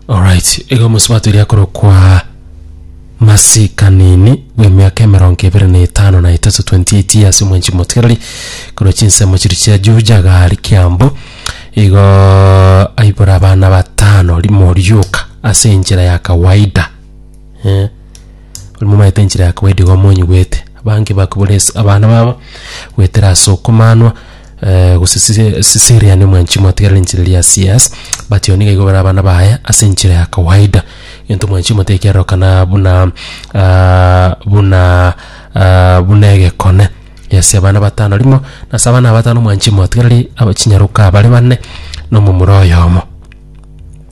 Alright, igo omosabato eria korokwa Masi Kanini bw'emiaka emerongo ebere na etano na etato 28 years omwenchi motigareri korwa chinsemo chiria chia Juja gari Kiambu igo aibora abana batano rimo rioka ase enchera ya kawaida Eh, ori momaete enchera ya kawaida igo monyigwete, abange bakobora ase abana babo goetera ase okomanwa eh, gose sise- sisiriane omwanchi motigerere enchera eria ya CS, but igo niga igo bare abana baye ase enchera ya kawaida, egento omwanchi motekererokana buna ah, buna ah, buna egekone. Yes abana batano rimo, nase abana aba batano omwanchi motigereri aba chinyaroka bare bane, na omomura oyomo.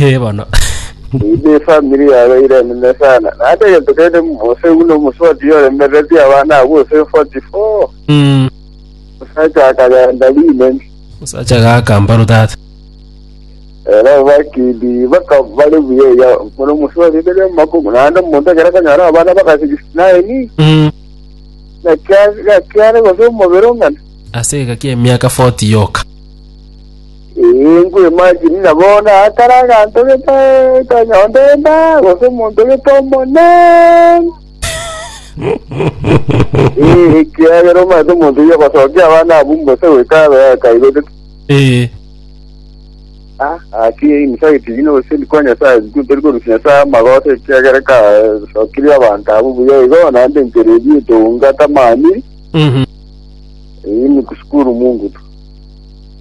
Eh, bono Ime efamiri yabo eire enene sana. Naende egento kende Mose buna omosubati yoremereretie abana abwo gose 44. Mm, Osacha akagenda rinene. osacha gaka mbaro tata Era bakindi baka bari buya ya buna omosubati ndere makumi. Naende omonto ekero kanyara abana baka 69. Mm, Na kia- gakiare gose omobere ong'ana. ase egaki emiaka 40 yoka Ee, nkweimajini ng'a bono aakare aganto getaetwa nyomba enda, gose omonto gete omonene. Ee, ekiagera omanyete omonto oyio ogosokia abana abwo mbose goika abe akaigotete. Ee, Ah, gaki inse agetinyia obosemi kwa Nyasae, sikuru tori korusia Nyasae amagoso, ekiagera kasokirie abanto abwo buya igo, naende enchera eria etounga tamanyiri, mhm. ee, niku sikuru mungu tu.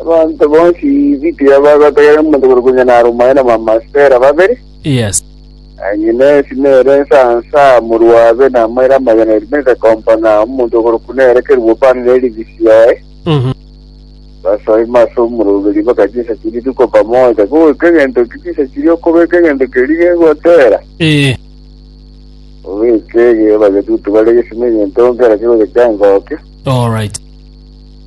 Abanto bonsi Gibea bagategerera omonto bore konya naromae na bamasitera babere, Yes. Ahinesi nere ensansa, morwabe namaire amaya na erime rirekomba, na omonto okorokwa nere Keruobani ne erivisi yaye. Mhm. Basoima ase omoroberio bagachia insa chiria rituko pamoja, goika egento ki chinsa chiria okobeka egento keria gegotera. Ee. Obeke ege, bagetutu bare gesima egento nkerakio gocha chiangokia. All right.